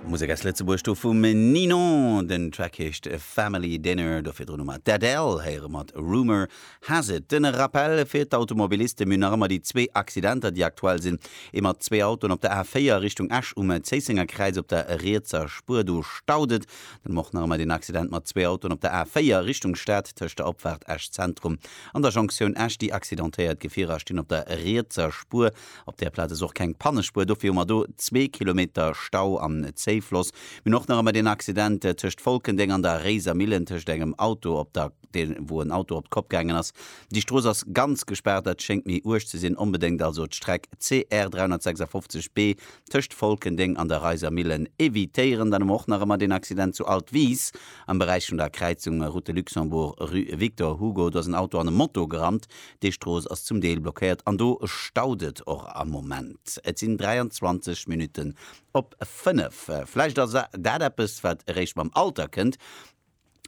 Musek aus Lëtzebuerg, do vum Ninon. Den Track heescht Family Dinner. Do virdrun hu mer d'Adele héiere mat Rumour Has It. Den Rappel fir d'Automobilisten, mir hunn nach ëmmer déi zwee Accidenter, déi aktuell sinn, ee mat zwee Autoen op der A4 Richtung Esch um Zéissenger Kräiz op der rietser Spuer, do staut et. Dann hu mer och nach ëmmer deen Accident mat zwee Autoen op der A4 Richtung Stad tëscht der Opfaart Esch Zentrum an der Jonktioun Esch. Déi accidentéiert Gefierer stinn op der rietser Spuer. Op där Plaz ass och keng Pannespuer, dofir hu mer do zwee Kilometer Stau an Zéifloss. Mir hunn och nach ëmmer deen Accident tëscht Folkendeng an der Réiser Millen, tëscht engem Auto op der, wou en Auto op d'Kopp gaangen ass. Déi Strooss ass ganz gespaart, dat schéngt méi uerg ze sinn. Onbedéngt also d'Streck CR 356 B tëscht Volkendeng an der Reisermillen evitéieren, dann hu mer och nach ëmmer deen Accident zu Altwis am Beräich vun der Kräizung Route de Luxembourg, rue Victor Hugo. Do ass en Auto an e Moto gerannt. Déi Strooss ass zum Deel blockéiert an do staut et och am Moment. Et sinn 23 Minutten op fënnef. Vläicht ass dat eppes, wat eréischt mam Alter kënnt.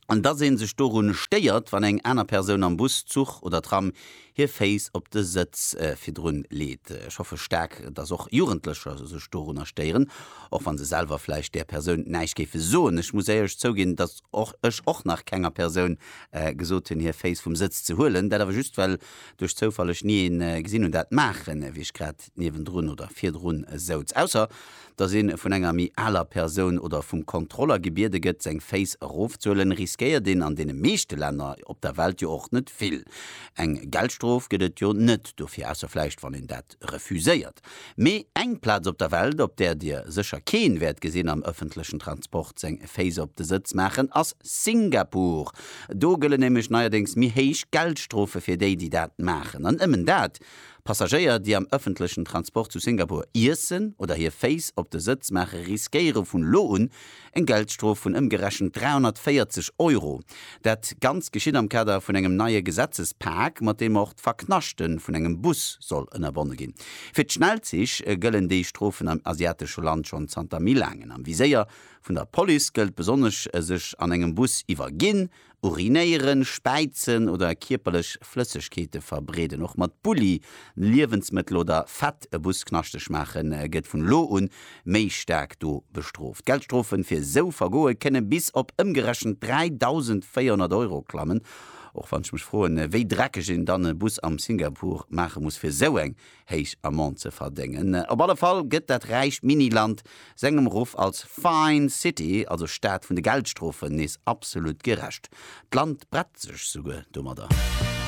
an dass ee sech dorun stéiert, wann eng aner Persoun am Bus, Zuch oder Tram hir Féiss op de Sëtz virdrun leet. Ech hoffe staark, dass och Jugendlecher sech dorunner stéieren, och wann se selwer vläicht där Persoun näischt géife soen. Ech muss éierlech zouginn, dass ech och nach kenger Persoun gesot hunn, hir Féiss vum Sëtz ze huelen, dat awer just well duerch Zoufall ech ni een gesinn hunn dat maachen, wéi ech grad niewendrun oder virdrun souz, ausser dass ee vun enger méi aler Persoun oder vum Kontroller gebiede gëtt, seng Féiss erofzuhuelen, riskéiert een an deene meeschte Länner op der Welt jo och net vill. Eng Geldstrof gëtt et jo net dofir, ausser vläicht wann een dat refuséiert. Mee eng Plaz op der Welt, op där Dir sécher keen wäert gesinn am ëffentlechen Transport seng Féiss op de Sëtz maachen, ass Singapur. Do gëllen nämlech neierdéngs méi héich Geldstrofe fir déi, déi dat maachen. An nëmmen dat Passagéier, déi am ëffentlechen Transport zu Singapur iessen oder hir Féiss op de Sëtz maachen, riskéiere vun elo un eng Geldstrof vun ëmgerechent 340 Euro. Dat Ganzt geschitt am Kader vun engem neie Gesetzespak, mat deem och d'Verknaschte vun engem Bus soll ënnerbonne ginn. Fir d'Schnellzich gëllen déi Strofen am asiatesche Land schonn zanter méi laangen. Am Viséier vun der Police gëllt besonnesch e sech an engem Bus iwwerginn Urinéieren, Späizen oder kierperlech Flëssegkeete verbreeden, och mat Bulli, Liewensmëttel oder Fett e Bus knaschteg maachen, gëtt vun elo un méi staark do bestrooft. D'Geldstrofen fir esou Vergoe kënne bis op ëmgerechent 3.400 Euro klammen, och wann ech mech froen, wéi dreckeg een dann e Bus am Singapur maache muss, fir esou eng héich Amende ze verdéngen. Op alle Fall gëtt dat räicht Mini-Land sengem Ruff als Fine City, also Stad vun de Geldstrofen, nees absolut gerecht. D'Land brett sech souguer domadder.